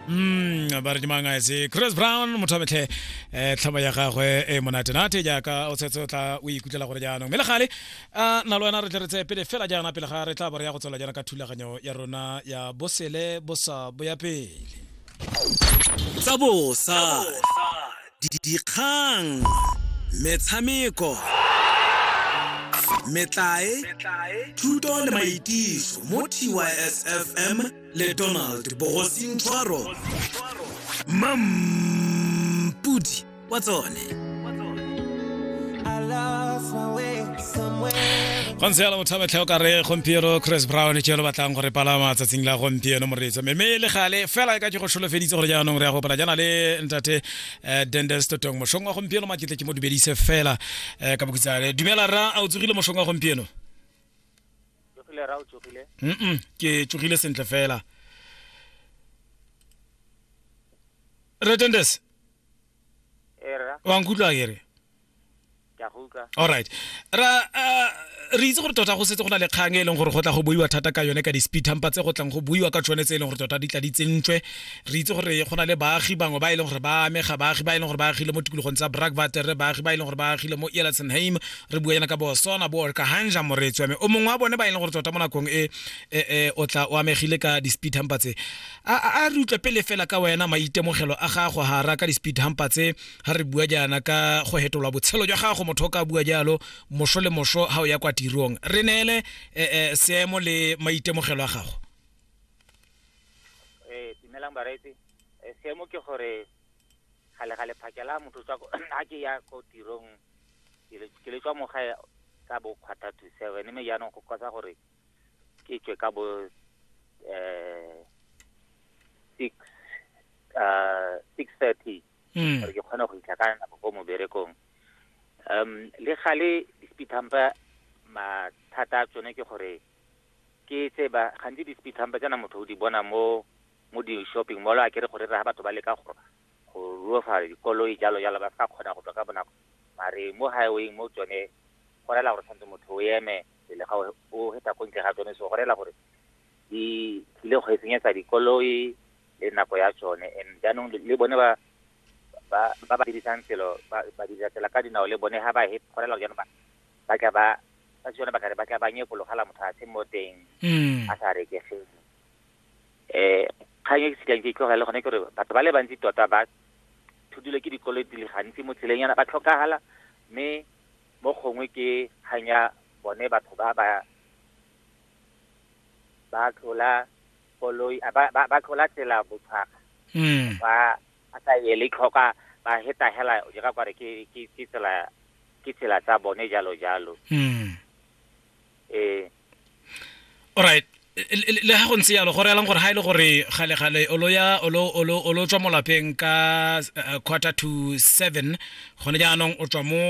Mm, ba re ke mang a etse chris brown motho wa metlhe um tlhamo ya gagwe e monatenate jaaka o tshetse o tla o ikutlela gore jaanong mme le gale a na le wena re tle re tseye pele fela jaana pele ga re tla bo re ya go tswela jaana ka thulaganyo ya rona ya bosele bosa boya pele tsa bosa dikgang metshameko metlae thuto le maitiso mo tysfm le donald bogosing tshwaro mampudi wa tsone I lost my way. go ntse yalo motho metlhe o ka re gompieno chris brown ke lo batlang gore palama tsatsing la gompieno moreetso mme mme le gale fela e ka ke go solofeditse gore jaanong re ya gopela jaana le ntate eh, dendes totong mošong wa gompieno maketle ke mo dumedise fela eh, ka bokutsane dumela ra a o tsogile mošong wa gompieno tsogile ra o tsogile mm ke tsogile sentle fela re dendes e rra wa nkutlwa kere alright ra uh, re itse gore tota go setse go na le kgang e leng gore go tla go buiwa thata ka yone ka di-speed hampa tse go tlang go buiwa ka tsone tse e leng gore tota di tla di tsentswe re itse gore go na le baagi bangwe ba e leng gore ba amega baagi ba e leng gore ba agile mo tikologong tsa brackvater baagi ba e leng gore ba agile mo elatsenheim re bua yana ka bosona bo ka hanja moretso ame o mongwe wa bone ba e leng gore tota mo nakong e, e, e o tla o amegile ka di-speed hampa tse a re utlwe pele fela ka wena maitemogelo a gago gara ka di-speed hampa tse ga re bua jaana ka go hetolwa botshelo jwa gago motho o ka bua jalo moso le moso ga o ya kwa tirong re neele eh, eh, seemo le maitemogelo a gago eh, dumelang bareetsi seemo ke gore gale gale phakela motho tswa a ke ya ko tirong ke le tswa mo gae ka bo quarter to seven mme jaanong go kwatsa gore ke tswe ka bo um six um six thirty mm. gore ke kgone go fitlha ka nako ko moberekong um le gale di-speed humper mathata a tsone ke gore ke tse ba gantsi di-speed humper tsena motho o di bona mo mo di-shopping mall a kere gore ra batho ba leka go go ruofa dikoloi jalo jalo ba sa kgona go tswa ka bonako mare mo highwayng mo tsone go rela gore tshwanetse motho o eme pele ga o heta ko ntle ga tsone so go rela gore di tlile go e senyetsa dikoloi le nako ya tsone and jaanong le bone ba ba ba ba dirisang tselo ba ba dirisa tsela ka dinao le bone ha ba he kgorela jalo ba ba tla ba ba tsone ba kare ba tla ba nyekologala motho a se mo teng mm. a sa rekegeng eh kgang e ke sitleng ke tlogele gone ke gore batho ba le bantsi tota ba thudile ke dikoloi di le gantsi mo tseleng yana ba tlhokagala mme mo gongwe ke kgang ya bone batho ba ba ba tlola koloi a ba ba- ba tlola tsela botshwaga Mm. ba a sa ele tlhoka ba heta hela o dira gore ke ke ke tsela ke tsela tsa bone jalo jalo Mm. eh alright le- le le ga go ntse yalo go reelang gore ga e le gore gale-gale o lo ya o lo- o lo- o lo tswa mo lapeng ka eh, quarter to seven gone jaanong o tswa mo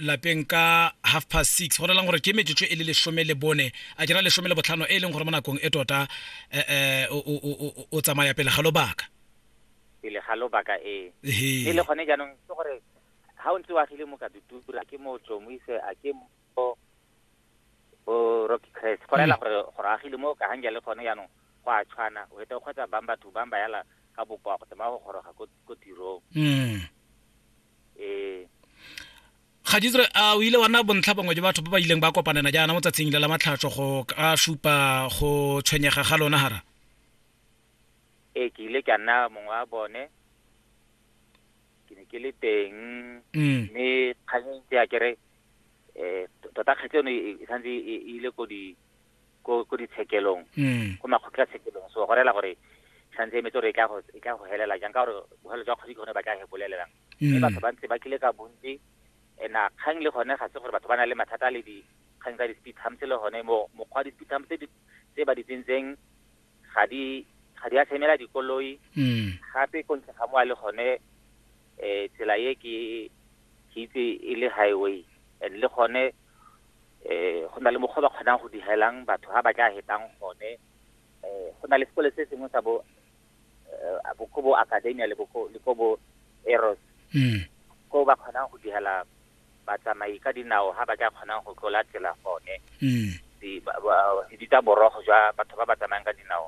lapeng ka half past six go relang gore ke metsotso e le lesome le bone a kera lesome le botlhano e e leng gore mo nakong e tota um o tsamaya pele ga lobaka pele ga lobaka ee e le gone jaanong ke gore ga o ntse o agile mo kadutura ke mo tlomoise a ke o rocky crest go laela gore gore agile mo ka hanja le gone yaanong go a tshwana o ete kgotsa bang batho bang ba yala ka bokoa go tema go goroga ko tirong um ga di tsere a o ile wa nna bontlha bangwe jwa batho ba ba ileng ba kopanela jaana mo tsatsing le la matlhatso go ka supa go tshwenyega ga lona gara ee ke ile ka nna mongwe wa bone ke ne ke le teng mm. mme kgang e ya kere eh tota kgetse ne e santse e, e ile ko di ko ko ditshekelong mm. go makgotla tshekelong so go rela gore santse e metse gore e tla go e tla go helela jang ka gore bogelo jwa kgwedi ke gone ba tla hepolelelang mme mm. batho ba ntse ba kile ka bontsi ena kgang le gone ga se gore batho ba na le mathata le di kgang tsa di-speed humps le gone mokgwa di-speed humps tse ba di tsentseng ga di ga di a semela dikoloi mm. gape ko ntle ga mo a le gone um tsela e ke ke itse e le highway and le gone um go na le mokgwa ba kgonang go dihelang batho ga ba tla hetang gone um go na le sekole se sengwe sa bo ko bo academia le ko bo eros mm. ko ba kgonang go digela batsamai ka dinao ga ba ka kgonang go tlola tsela gone mm. di, ba, ba, di tsa borogo jwa batho ba ba tsamayang ka dinao